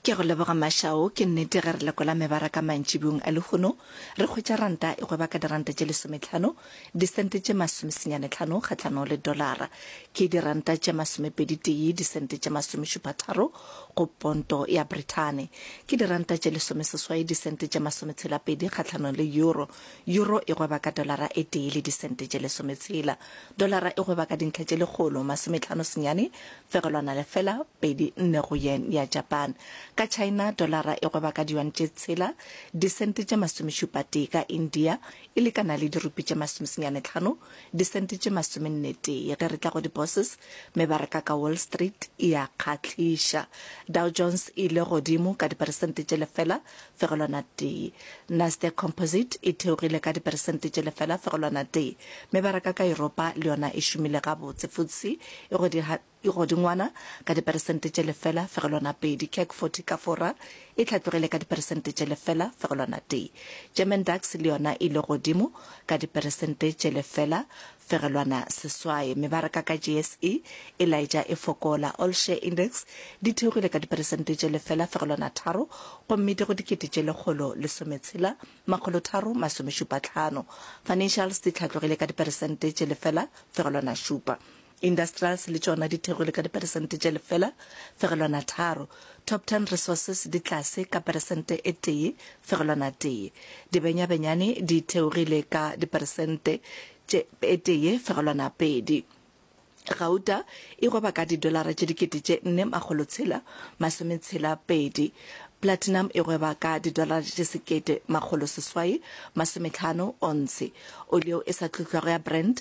Ke a go leboga Mashao. Ke nnete ge re lekola mebaraka mantšibong a lehono, re hwetša ranta e gweba ka diranta tše lesometlhano, disente tše masomesenyane tlhano kgahlano le dolara. Ke diranta tše masomepedi-tee, disente tše masomešupatharo go ponto ya Brithane. Ke diranta tše lesomeseswai, disente tše masometshela-pedi kgahlano le euro. Euro e gweba ka dolara e tee le disente tše lesometshela. Dolara e gweba ka dintlha tše lekgolo masometlhano senyane Fegelwana lefela, pedi, nne go yen ya Japan. Ka China, dolara e gweba ka diyuan tše tshela, disente tše masomešupatee. Ka India, e lekana le dirupi tše masomesenyane tlhano, disente tše masomennetee. Ge re tla go di-bourses, mebaraka ka Wall Street e a kgahliša. Dow Jones e ile godimo ka diperesente tše lefela fegelwana tee. Nasdaq Composite e theogile ka diperesente tše lefela fegelwana tee. Mebaraka ka Yuropa le yona e šomile gabotse, FTSE e godingwana ka diperesente tše lefela fegelwana pedi. CAC 40 ka Fora e hlatlogile ka diperesente tše lefela fegelwana tee. German DAX le yona e ile godimo ka diperesente tše lefela Fegelwana seswai, mebaraka ka JSE e laetša e fokola, All Share Index, di theogile ka diperesente tše lefela fegelwana tharo gomme di go dikete tše lekgolo lesometshela makgolo tharo masomešupa tlhano. Financials di hlatlogile ka diperesente tše lefela fegelwana šupa. Industrials le tšona di theogile ka diperesente tše lefela fegelwana tharo. Top Ten Resources di tlase ka peresente e tee fegelwana tee. Dibenyabenyane di theogile ka diperesente tše e tee fegelwana pedi. Gauta e goba ka didolara tše dikete tše nne makgolo tshela masome tshela pedi. Platinum e goba ka didolara tše sekete makgolo seswai masome tlhano ontshe. Oli yeo e sa tlotlwago ya Brent